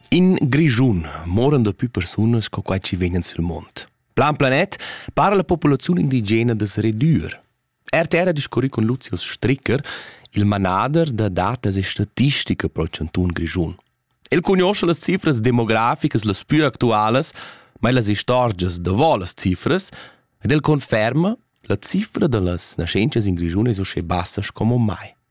In Grischun moran da più persunas co quai ci vegnan sul mond. Plan planet para la popolazione indigena da redür. RTR ha discurri con Lucius Stricker, il manader da datas e statistica pro Chanton Grischun. El conosce las cifras demograficas las più actualas, ma las istorgias davò las cifras, ed el conferma la cifra da las nascenzias in Grischun es uschè bassas come mai.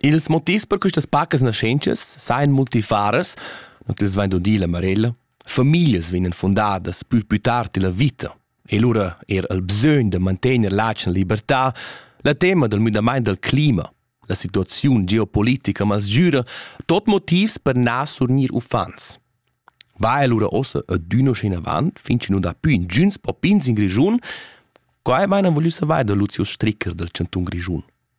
Ils motivs per questas pacas naschentschas sajan multifaras, not els vain dudi la Marella. Famiglias vegnan fundadas pü pü tard illa vita e lura eir al bsögn da mantegner l'atgna libertà, la tema dal müdamaint dal clima, la situaziun geopolitica masgüra, tot motivs per na surgnir uffants. Va el lura ossa adüna schi inavant, fin chi nu dà pü ingüns popins in Grischun? Quai maina voglü savair da Lucius Stricker dal Chantun Grischun.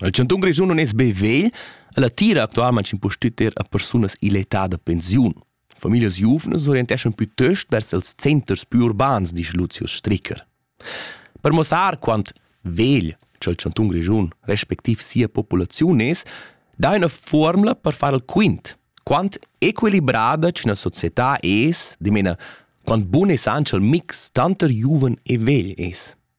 Il chantun Grischun non es be vegl, ella tira actualmaing impustüt er a persunas ill'età da pensiun. Familias giuvnas orienteschan pütöst vers els centers più urbans, dice Lucius Stricker. Per mossar quant vegl ch'el chantun Grischun respectiv sia populaziun es, dà üna formula per far il quint. Quant equilibrada ch'üna società es, dimena, quant bun es anche il mix tanter giuven e vegl es.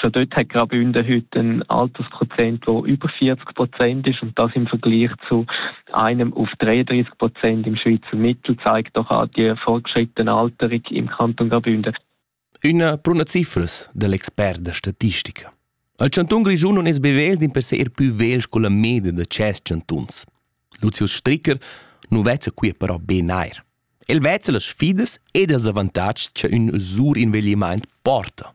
schon dort hat gerade Bünden heute ein Altersprozent, der über 40 Prozent ist und das im Vergleich zu einem auf 33 Prozent im Schweizer Mittel zeigt doch auch die fortgeschrittene Alterung im Kanton Graubünden. Una bruna cifras dell'expert da statistica. Il chanton grischun non es bevel din per ser più vegl con la media da ces chantuns. Lucius Stricker nu vezza qui però be nair. El vezza las sfidas ed els avantatgs che ün sur inveglimaint porta.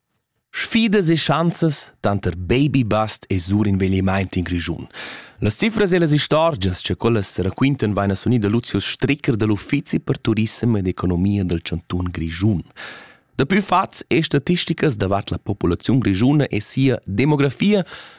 Sfidas e schanzas tanter baby-bust e surinveglimaint in Grischun. Las cifras e las istorgias cha quellas raquintan vaina sunida Luzius Stricker da l'Uffizi per turissem ed economia dal chantun Grischun. Dapü fats e statisticas davart la populaziun grischuna e sia demografia